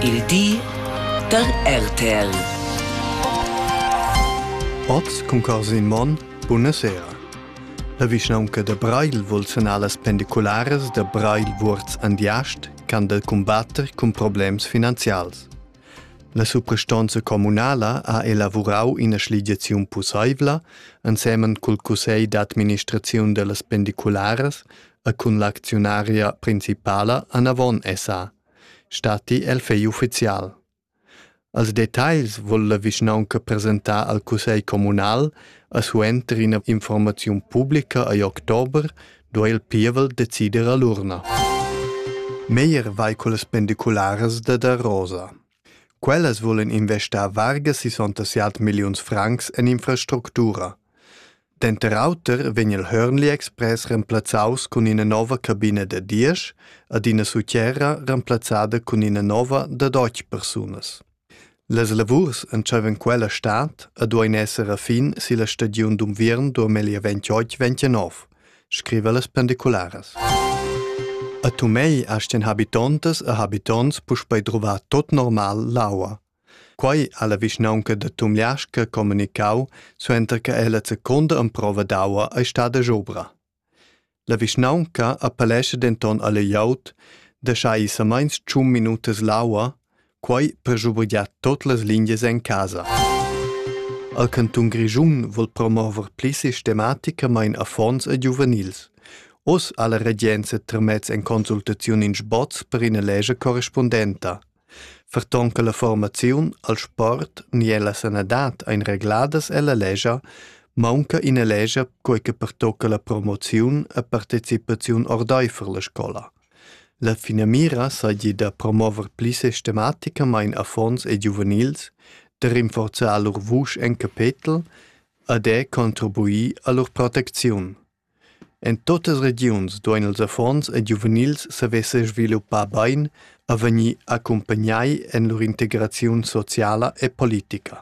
Il di da RTL. Oz cun Corsin Monn, buna sera. La vischnaunca da Breil vol sanar las pendicularas da Breil Vuorz Andiast can del combatter cun problems finanzials. La suprastonza communala ha elavurau ina schligiaziun pusseivla ensemen cul cussegl d'administraziun dellas pendicularas e cun l'acziunaria principala Anavon SA. statti el fegl ufficial. Als detagls vul la vischnaunca presentar al cussegl communal a suenter ina informaziun publica agl october duai il pievel decider a l'urna. Meyer vai con las pendicularas da da Rosa. Quellas vulan investar varga 67 milliuns francs en infrastructura. Denter auter vegn il Hörnli Express remplazzaus cun ina nova cabina da diesch ed ina sutgera remplazzada cun ina nova da deutsch persunas. Las lavurs entscheivan quella stad e duein esser a fin silla stagiun d'unviern 2028-29. scriva las pendicularas. A Tumei astien habitontas e habitonts puspei druvar tot normal l'aua. Quei ha la vischnaunca da Tumliasca comunicau suenter che ella secunda emprova d'aua ei stada jobra. La vischnaunca appellescha denton alle glieud da schai samains tschun minutas l'aua Quai per schubergiar tot las lingias en casa. El cantun Grischun vul promover pli sistematicamain affons e giuvenils. Oz ha la regenza tramez en consultaziun in sboz per ina lege correspondenta. Ferton che la formaziun al sport ni alla sanadad ein regladas ella legia, maunca ina legia quei che pertocca la promoziun e partecipaziun ordeifer la scola. La finamira seigi da promover pli sistematicamain affons e giuvenils, da rinforzar lur vusch en capetel e da contribuir a lur protecziun. En tuttas regiuns duein ils affons e giuvenils saver sesviluppar bein e vegnir accumpagnai en lur integraziun sociala e politica.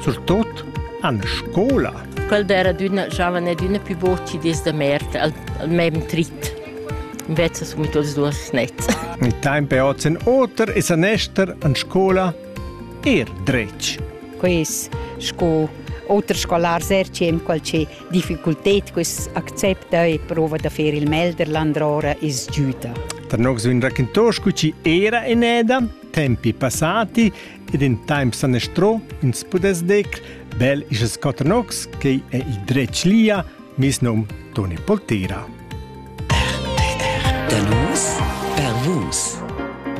surtut en scola. Quel d'era d'una giovane d'una più voci desde mert al, al mem trit. Invece sono tutti due snezza. Il tempo è ozen oter e san ester in scuola er dretg. Quest sco oter scolar sercem qualche difficultät quest accepta e prova da fare il melder landrora is giuta. Tra nox un raccontos cu ci era eneda, tempi passati ed in temps sanestro ins pudess decr bel isches cotrnox che è il dretg lia mis num Toni Poltera. Per nus, per vus.